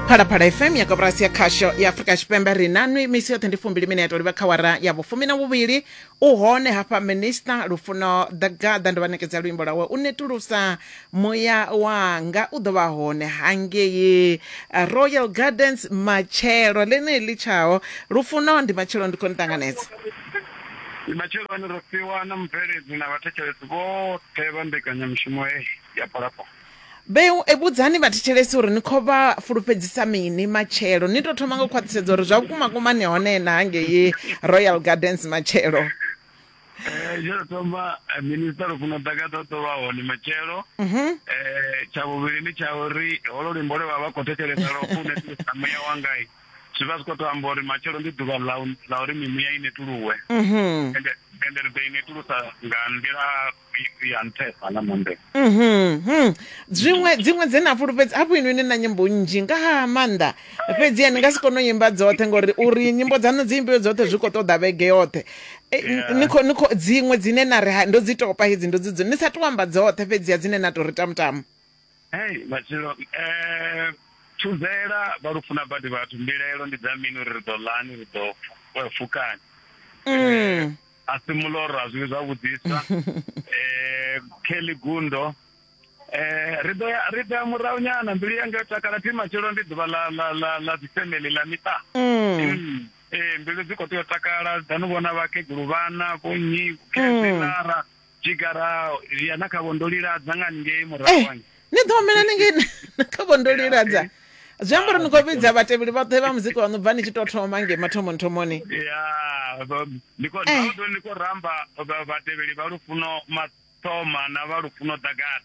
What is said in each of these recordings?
phalaphala fm ya koporasi ya khasho ya afurika tshipembe ri na nwi misi yoṱhe ndi fumbili mineto livha kha wara ya vhufumi na vhuvhili u hone hafha minista lufuno the gather ndi vha nekedza luimbo lwawe u netulusa muya wanga u ḓo vha hone hangei eh, royal gardens matshelo ḽeneḽi litshaho lufuno ndi matshelo ndi khou ni ṱanganedza ndi matshelo ane ro fhiwa na mubveledzi na vhathetshelesi vhoṱhe vha mbekanyamushumo heyi ya phalaphala Mbeu, E vhudzani vhathetshelesi uri ni khou vha fulufhedzisa mini matshelo. Ni tou thoma nga u khwaṱhisedza uri zwa vhukuma kuma ni hone na hangei Royal Gardens matshelo. Eh, tsha u thoma eh, minista lufuno ḓaka ḓo ḓo vha hone matshelo eh tsha vhuvhili ndi tsha uri holo luimbo lwe vha vha khou thetshelesa lwo u netulusa muya wangai zwi vha zwi khou tou amba uri matshelo ndi ḓuvha ḽa u- ḽa uri mimuya i netuluwe ende ende ri ḓo i netulusa nga nḓila bibi ya nṱhesa nga maanḓesa Mhm, mhm. zwiṅwe dziṅwe dze na fulufhedza hafho inwi ni na nyimbo nnzhi nga ha maanḓa fhedziha ni nga si kone u imba dzoṱhe ngori uri nyimbo dzaṋu dzi imbiwe dzoṱhe zwi khou ṱoḓa vhege yoṱhe E, n- ni khou- ni khou- dziṅwe dzine na ri ha- ndo dzi topa hedzi ndo dzi dzi- ni sa to amba dzoṱhe fhedziha dzine na tou ri tamutamu hei matshilo um thuzela vha lu funa badi vhathu mbilaelo ndi dza mini uri ri ḓo lani ri ḓo fu- eh, fukani Mm. a si muloro a zwiwi zwavhuḓisa eh Kelly Gundo eh ri ḓo ya ri ḓo ya murahu nyana mbilu yanga yo takala thi matshelo ndi ḓuvha ḽa ḽa ḽa ḽa dzi family ḽa miṱa Mm. eh mbilu dzi kho tea u takala dza no vhona vhakegulu vhana vho nnyi khezwi lara Tshigara zwi ya na kha vho ndo liladza nga ngei murahu eh, hange. ni ḓo humela ni ngei na kha vho ndo liladza zwi amba uri ni khou vhidza vhatevheli vhoṱhe vha muzika waṋu bva ni tshi tou thoma ngei mathomoni thomoni ya ba- ndi khou Eh. ndi khou ramba vha- vhatevheli vha lufuno mathoma na vha lufuno ḓagata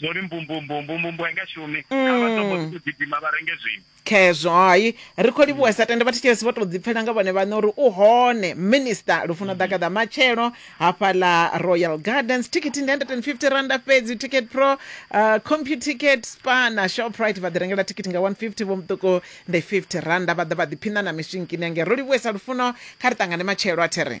zwo ri mbumbumbu mbumbumbu a i nga shumi kha vha tombo ḓi tou gidima vha renge zwiṅwe khezwo hai ri khou livhuwa sa tende vhathetshelesi vho tou ḓipfela nga vhone vhaṋe uri u hone minista lufuno ḓakaḓa matshelo hafhaḽa royal gardens thikhithi ndi 150 randa fhedzi ticket pro uh, computicket spa na shoprite vha ḓi rengela thikhithi nga 150 vho muṱuku ndi 50 randa vha ḓa vha ḓiphiṋa na miswinkini ange ro livhuwesa lufuno kha ri ṱangane matshelo a there